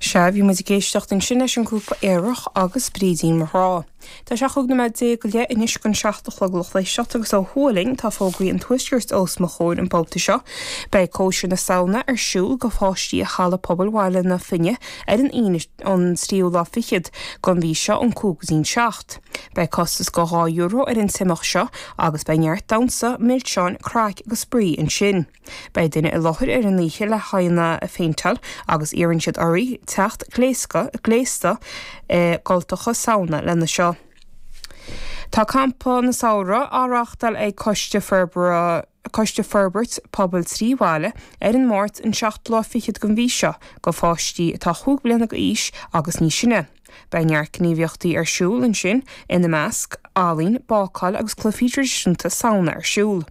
Sea, bhí muid ag éisteacht ansin leis an ghrúpa aerach agus Brídín mo Ghrá. Tá sé cúig nóiméad déag go leith anois chun seacht a chlog lucht éisteachta agus ó thuaidh linn tá fógraí an tuaiscirt os mo chomhair an babhta seo. Beidh cóisir na Samhna ar siúl go pháistí i Halla Pobail Bhaile na Finne ar an Aoine an tríú lá fichead gon mhí seo ón cúig go dtí'n seacht. Beidh costas go dhá euro ar an t-imeacht seo agus beidh neart damhsa, milseáin, craic agus spraoi ansin. Beidh duine i láthair ar an oíche le haghaidheanna a phéinteáil agus iarrann siad oraibh teacht gléasctha, gléasta i gcultacha Samhna lena seo. Tá Campa na Samhradh á reáchtáil ag Coiste Forbartha Coiste Forbairt Pobail Trí Bhaile ar an Máirt an 27ú den mhí seo do pháistí atá chúig bhliana d'aois agus níos sine. Beidh neart gníomhaíochtaí ar siúl ansin, ina measc, ealaín, bácáil agus cluifí traidisiúnta Samhna ar siúl.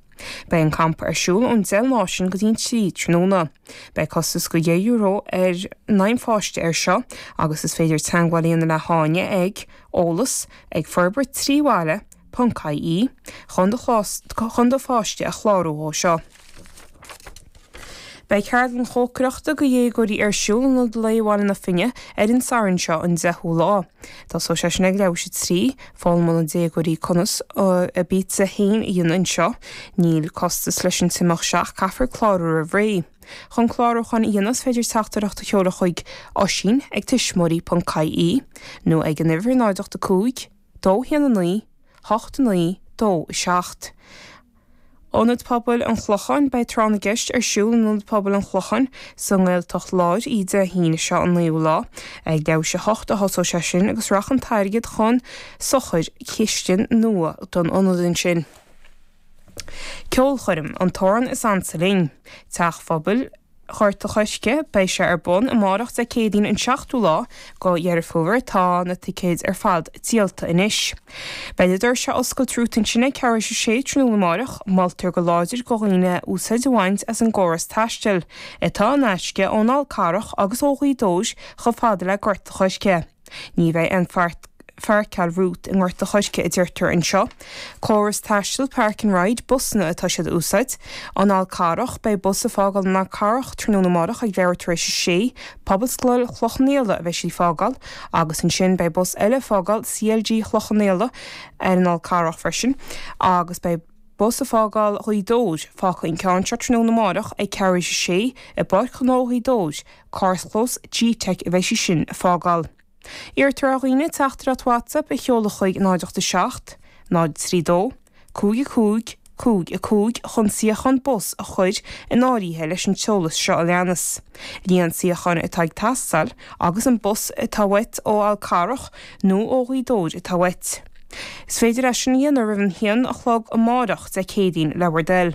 Beidh an campa ar siúl ón deich ar maidin go dtí an trí tráthnóna. Beidh costas go dheich euro in aghaidh an pháiste air seo agus is féidir teagmháil a dhéanamh le hÁine ag, eolas, ag, forbairt trí bhaile, ponc, ie chun do chun do pháiste a chlárú dhó seo. Beidh ceardlann chócaireachta do dhéagóirí ar siúl in Ionad Lae Bhaile na Finne ar an Satharn seo an 10ú lá. Tosóidh sé sin ag leathuair tar éis a trí. Foghlaimeoidh na déagóirí conas a bpizza féin a dhéanamh anseo. Níl costas leis an t-imeacht seo ach caithfear clárú roimh ré. Chun clárúchán a dhéanamh is féidir teachtaireacht a sheoladh chuig Oisín ag tuismitheoirí.ie nó ag an uimhir 0 8 5 2 1 9 8 9 2 7. Ionad Pobail an Chlocháin Beidh Tráth na gCeist ar siúl in Ionad Pobail an Chlocháin sa nGaeltacht Láir Dé hAoine seo an 9ú lá. Ag leathuair tar éis a hocht a thosóidh sé sin agus rachaidh an t-airgead chun sochair chistin nua don ionad ansin. Ceolchoirm, 'An tAmhrán is Ansa Linn', Teach Phobail, Ghort a' Choirce. Beidh sé ar bun amárach Dé Céadaoin an 7ú lá go Dheireadh Fómhair. Tá na ticéid ar fad díolta anois. Beidh na doirse ar oscailt romhat ansin ag ceathrú tar éis a sé tráthnóna amárach. Moltar go láidir go dhaoine úsaid a bhaint as an gcóras taistil atá in aisce ón Fhál Carrach agus ó Ghaoth Dobhair chomh fada le Gort a' Choirce. Ní bheidh aon pháirceáil romhat i nGort a' Choirce a deirtear anseo, córas taistil park and ride busanna atá siad a úsáid, an Fhál Carrach, beidh bus a' fágáil an Fhál Carrach tráthnóna amárach ag leathuair tar éis a sé, Pobalscoil Chloich Cheann Fhaola a bheidh siad a' fágáil agus ansin beidh bus eile a' fágáil CLG Chloich Cheann Fhaola ar an Fhál Carrach freisin agus beidh bus a' fágáil Ghaoth Dobhair fágfaidh an ceann seo tráthnóna amárach ag ceathrú tar éis a sé i bPáirc Ghnó Ghaoth Dobhair Carrchlós G-Tech a bheidh sí sin a fágáil. Iarrtar ar dhaoine teachtaireacht WhatsApp a sheoladh chuig 087 032 55 55 chun suíochán bus a chur in áirithe leis an t-eolas seo a leanas, líon suíocháin atá ag teastáil agus an bus atá uait ó Fhál Carrach nó ó Ghaoth Dobhair atá uait. Is féidir é sin a dhéanamh roimh an haon a chlog amárach, Dé Céadaoin, le bhur dtoil.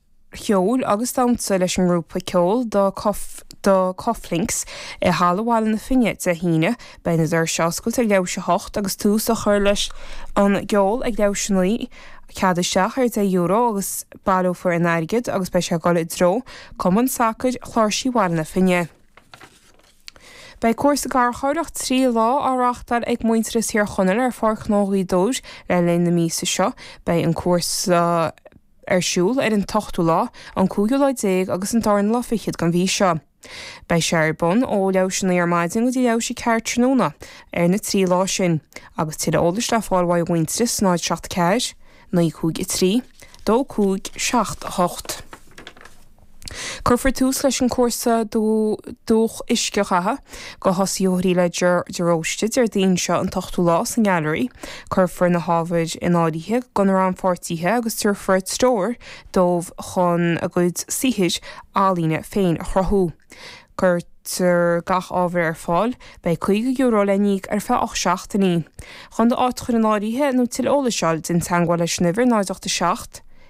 cheoil agus damhsa leis an ngrúpa ceoil The Cufflinks i Halla Bhaile na Finne Dé hAoine. Beidh na doirse oscailte ag leath i ndiaidh a hocht agus tús á chur leis an gceol ag leath i ndiaidh a naoi. Cead isteach ar €10 agus baileofar an t-airgead agus beidh sé ag dul i dtreo Cumann Sacair Ghirsí Bhaile na Finne. Beidh cúrsa garchabhrach trí lá á reáchtáil ag Muintearas Thír Chonaill ar Pháirc Ghnó Ghaoth Dobhair le linn na míosa seo. Beidh an cúrsa. ar siúl ar an t-ochtú lá, an cúigiú lá déag agus an dara lá fichead den mhí seo. Beidh sé ar bun ó leath théis a naoi ar maidin go dtí leath théis a ceathair tráthnóna ar na trí lá sin agus tuilleadh eolais le fáil uaidh Mhuintearas 074 953 2578. Cuirfear tús leis an chúrsa Dúch Uiscedhatha go thosaitheoirí le Ger de Róiste Déardaoin seo an t-ochtú lá sa nGailearaí. Cuirfear na hábhair in aithne go na rannpháirtithe agus tabharfar stiúir dóibh chun a gcuid saothair ealaíne féin a chruthú. Cuirtear gach ábhar ar fáil. Beidh €50 le n-íoc ar feadh 8 seachtainí. Chun d'áit a chur in áirithe nó tuilleadh eolais a fháil, déan teagmháil leis an uimhir 0 8 7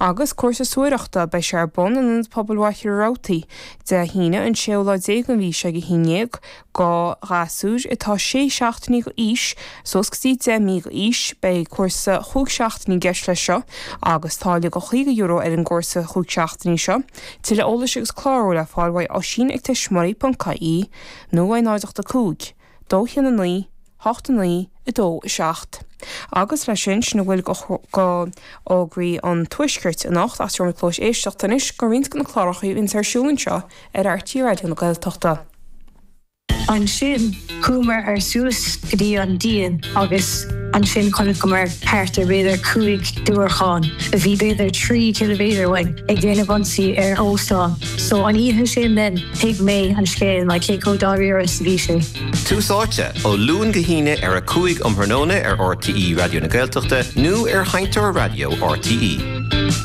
Agus cúrsa suathaireachta, beidh sé ar bun in Ionad Pobail Mhachaire Rabhartaí, Dé hAoine, an séú lá déag den mhí seo ag a haon dhéag, go ghasúir atá sé seachtainí go aois suas go dtí deich mí go aois. Beidh cúrsa chúig seachtainí i gceist leis seo agus táille go chaoga euro ar an gcúrsa chúig seachtainí seo. Tuilleadh eolais agus clárú le fáil uaidh Oisín ag tuismitheoirí.ie nó uaidh 085 2 6 9, 8 9, 2, 7. Agus leis sin, sin a bhfuil go fhógraí an Tuaiscirt anocht ach seo blas éisteacht anois go roinnt de na cláracha a bhíonn ar siúl anseo ar RTÉ Raidió na Gaeltachta. Ansin, chuamar suas go dtí an díon agus ansin chonaiceamar thart ar b'fhéidir cúig diúracán a bhí b'fhéidir trí ciliméadar uainn ag déanamh ionsaí ar óstán. So an oíche sin then, thuig mé an scéal, like cé chomh dáiríre is a bhí sé. Tús Áite, ó Luan go hAoine ar a 5 um thráthnóna ar RTÉ Raidió na Gaeltachta nó ar sheinnteoir raidió RTÉ.